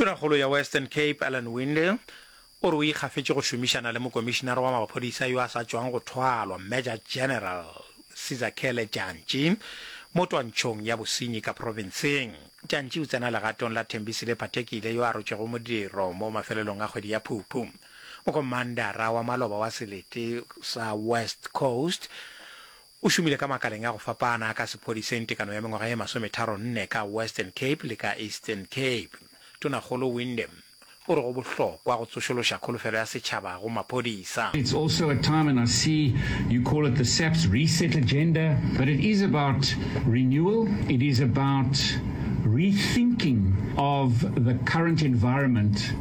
Tonakgolo ya Western Cape, Alan Winde, o re o ikgafetše go šomišana le mokomišinara wa maphodisa yo a sa tšwang go thwalwa, Major General Sizakele Jantji, mo twantšhong ya bosenyi ka profenseng. Jantji o tsena legatong la Thembisile Phathekile yo a rotšwego modiro mo mafelelong a kgwedi ya Phuphu. Mokomandara wa maloba wa selete sa West Coast O šomile ka makaleng a go fapana a ka sephodiseng tekano ya mengwaga ye masometharo-nne ka Western Cape le ka Eastern Cape. Tonakgolo Windham o re go bohlokwa go tsošološa kholofelo ya setšhaba go maphodisa. It's also a time and I see you call it the SAPS reset agenda but it is about renewal, it is about rethinking of the current environment.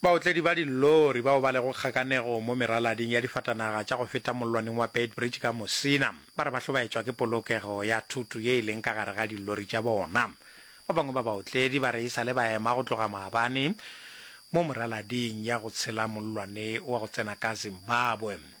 Baotledi ba dillori bao ba lego kgakanegong mo meralading ya difatanaga tša go feta mollwaneng wa Beitbridge ka Musina ba re ba hlobaetšwa ke polokego ya thoto ye e leng ka gare ga dillori tša bona. Ba bangwe ba baotledi ba re e sa le ba ema go tloga maabane mo meralading ya go tshela mollwane wa go tsena ka Zimbabwe.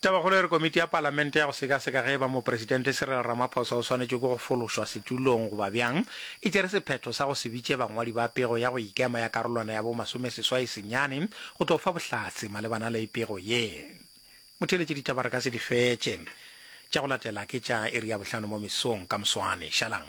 Tabakgolo e re Komiti ya Palamente ya go Sekaseka ge e ba Mopresidente Cyril Ramaphosa o swanetše ke go fološwa setulong goba bjang e tšere sephetho sa go se bitše bangwadi ba pego ya go ikema ya karolwana ya bo masomeseswai senyane go tlo fa bohlatse malebana le pego ye. Motheeletši ditaba re ka se di fetše. Tša go latela ke tša iri ya bohlano mo mesong ka moswane. Šalang.